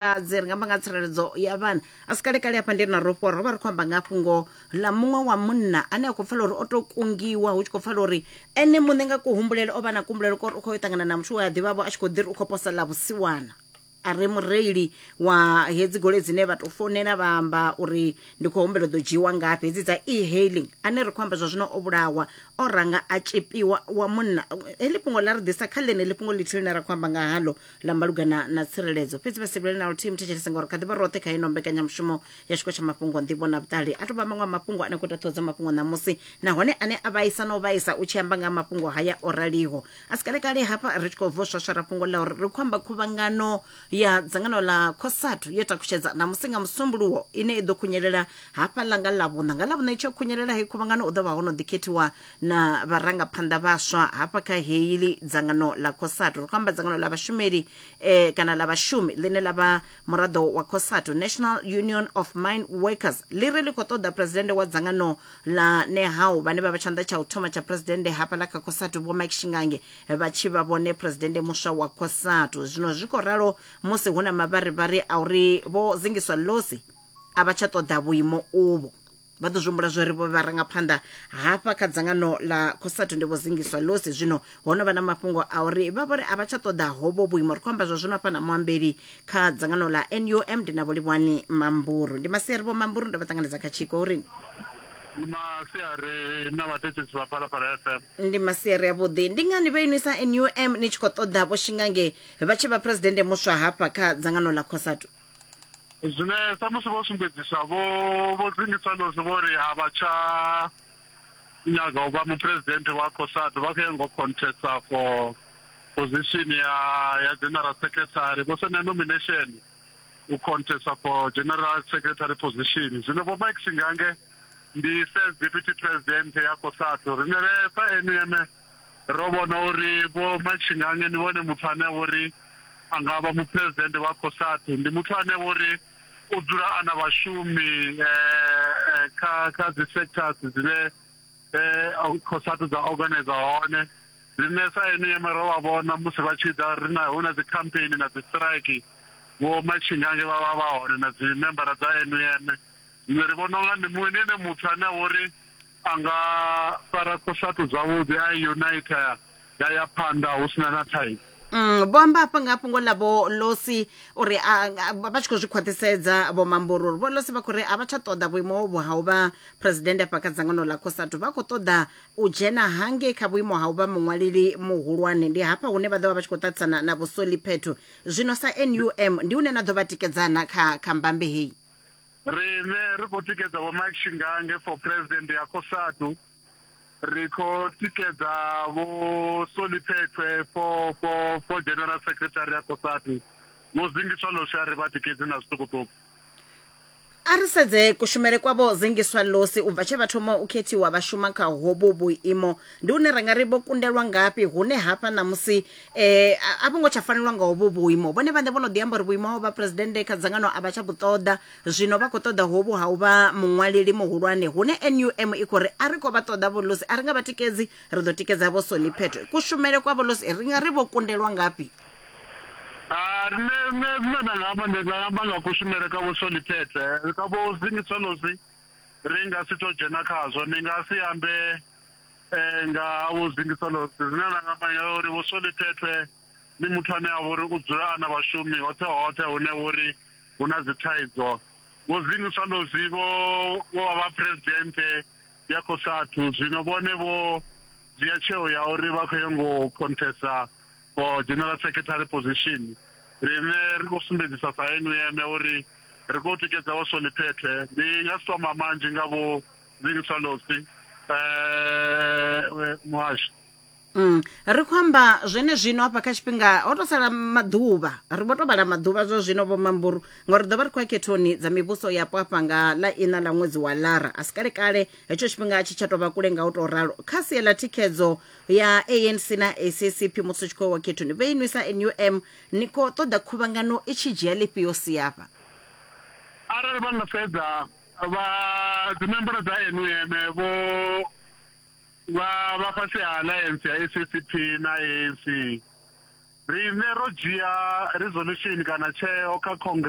vhafumakadzi ri nga amba nga tsireledzo ya vhana a si kalekale hafha ndi na rofho ro vha ri khou amba nga fhungo ḽa muṅwe wa munna ane a khou pfela uri o tou kungiwa hu tshi khou pfela uri ene muṋe nga kuhumbulele o vha na kuhumbulele kori u khou yo ṱangana na muthu we a ḓivhavho a tshi khou ḓi ri u khou posa ḽa vhusiwana a re mureili wa hedzi goloi dzine vha tou founela vha amba uri ndi khou humbela u ḓo dzhiiwa ngafhi hedzi dza e-hailing ane ri khou amba zwa zwino o vhulawa o ranga a tshipiwa wa munna heḽi fhungo ḽa ri ḓisa kha ḽeneḽi fhungo ḽithihi ḽine ra khou amba nga haḽo la malugana na tsireledzo fhedzi vha sivhile na luthihi muthetshelese ngauri kha ḓivha roṱhe kha ino mbekanyamushumo ya tshiko tsha mafhungo nḓivho na vhuṱali a tovha maṅwe a mafhungo ane khou ita ṱhoho dza mafhungo ṋamusi nahone ane a vhaisa na u vhaisa u tshi amba nga ha mafhungo haya o raliho a si kalekale hafha ri tshi khou bvo swaswara fhungo ḽa uri ri khou amba khuvhangano ya dzangano ḽa cosatu yo takutshedza ṋamusi nga musumbuluwo ine i ḓo khunyelela hafha ḽa nga ḽavhuṋa nga ḽavhuṋa i tshi yo khunyelela hei khuvhangano u ḓo vha ho no ḓikhethiwa na vharangaphanḓa vhaswa hafha kha heili dzangano ḽa cosatu ri khou amba dzangano ḽa vhashumeli eh, kana ḽa vhashumi ḽine ḽa vha muraḓo wa cosatu national union of mine workers ḽi ri ḽi khou ṱoḓa presidennde wa dzangano ḽa nehau vhane vha vha tshanḓa tsha u thoma tsha presidennde hafha ḽa kha cosatu vho mike shingange vha tshi vha vhone presidennde muswa wa cosatu zwino zwi khou ralo musi hu na mavharivhari a uri vho zingiswa losi a vha tsha ṱoḓa vhuimo uvho vha ḓo zwihumbula zwo ri vho vharangaphanḓa hafha kha dzangano ḽa cosatu ndi vho zingiswa losi zwino ho no vha na mafhungo a uri vha vhori a vha tsha ṱoḓa hovho vhuimo ri khou amba zwa zwino hafha na muambeli kha dzangano ḽa num ndi na vholivhani mamburu ndi masiari vho mamburu ndo vha ṱanganedza kha tshiko uri ndi masiari na vhathetshetsi vha phalaphala fm ndi masiari avhuḓi ndi ngani vha inwisa num ni tshi khou ṱoḓa vho shingange vha tshi vha phuresidennde muswa hafha kha dzangano ḽa cosatu Zwine samusi vho sumbedzisa vho vho dzingiswa lozwi vho ri a vha tsha nyaga u vha muphuresidennde wa COSATU vha khou ya ngo contesta for position ya ya general secretary vho senda nomination u contesta for general secretary position zwino vho Mike Singange ndi first deputy president ya COSATU rine sa NUM Ro vhona uri Vho Machingange ndi vhone muthu ane a vha uri a nga vha Muphuresidennde wa Cosatu. Ndi muthu ane a vha uri u dzula a na vhashumi kha kha dzi sectors dzine Cosatu dza organizer hone. Riṋe sa NEM ro vha vhona musi vha tshi ḓa ri na hu na dzi campaign na dzi strike Vho Machingange vha vha vha hone na dzi membara dza NEM. Zwino ri vhona unga ndi muṅwe ndi ene muthu ane a vha uri A nga fara khosatu zwavhuḓi a i unita ya ya phanḓa hu sina na thaidzo. Mm, vho amba hafha nga fhungo ḽa vho losi uri vha tshi khou zwi khwaṱhisedza vho mamboro uri vho losi vha khou ri a vha tsha ṱoḓa vhuimo hovhu ha u vha phuresidennde afha kha dzangano ḽa khosatu vha khou ṱoḓa u dzhena hangei kha vhuimo ha u vha muṅwaleli muhulwane ndi hafha hune vha ḓo vha vha tshi khou ṱaṱisana na vhusoli phetho zwino sa num ndi hune na ḓo vha tikedzana kha kha mbambe heyi Riṋe ri khou tikedza Vho Mike Shingange for President ya Cosatu, ri khou tikedza Vho Solly Phethwe for for for General Secretary ya Cosatu, Vho Zingiswa Losi a ri vha tikedzi na zwiṱukuṱuku. A ri sedze kushumele kwa Vho Zingiswa Losi u bva tshe vha thoma u khethiwa vha shuma kha hovhu vhuimo, ndi hune ra nga ri vho kundelwa ngafhi hune hafha ṋamusi eh a vho ngo tsha fanelwa nga hovho vhuimo vhone vhaṋe vho no ḓi amba uri vhuimo ho vha presidennde kha dzangano a vha tsha vhuṱoḓa zwino vha khou ṱoḓa hovhu ha u vha muṅwaleli muhulwane hune num i khou ri a ri khou vha ṱoḓa vholosi a ri nga vha tikedzi ri ḓo tikedza vho soni phetho kushumele kwa vholosi ri nga ri vho kundelwa ngafhi Ah, nṋe nṋe zwine nda nga amba ndi nga amba nga kushumele ka vho soni phethe ka vho zingisolosi ri nga si to dzhena khazwo ni nga si ambe Eh, nga vho Zingisolosi zwine nda nga manya uri vho Solithethwe ndi muthu ane a vha uri u dzula a na vhashumi hoṱhe hoṱhe hune vha uri hu na dzi thaidzo vho Zingisolosi vho vho vha vha phuresidennde ya Cosatu zwino vhone vho dzhia tsheo ya uri vha khou yo ngo khonthesa for general secretary position riṋe ri khou sumbedzisa sa NUM uri ri khou tikedza vho Solithethwe ndi nga si tou amba manzhi nga vho Zing Swallows eh muhasho Mm. ri khou amba zwene zwino hafha kha tshifhinga ho to sala maḓuvha ri vho to vhala maḓuvha zwa zwino vho mamburu ngauri ḓo vha ri khou ya khethoni dza mivhuso yapo hafha nga ḽa ina ḽa ṅwedzi wa lara a si kale kale hetsho tshifhinga a tshi tsha tou vha kule nga u tou ralo kha sia ḽa thikhedzo ya anc na saccp musi u tshi khou wa khethoni vhe inwi sa num ni khou ṱoḓa khuvhangano i tshi dzhia ḽifhio siafha arali vha nga sedza Vha dzimemboro dza NUM vho vha vha fhasi ha alliance ya SACP na ANC. Riṋe ro dzhia resolution kana tsheo kha congress.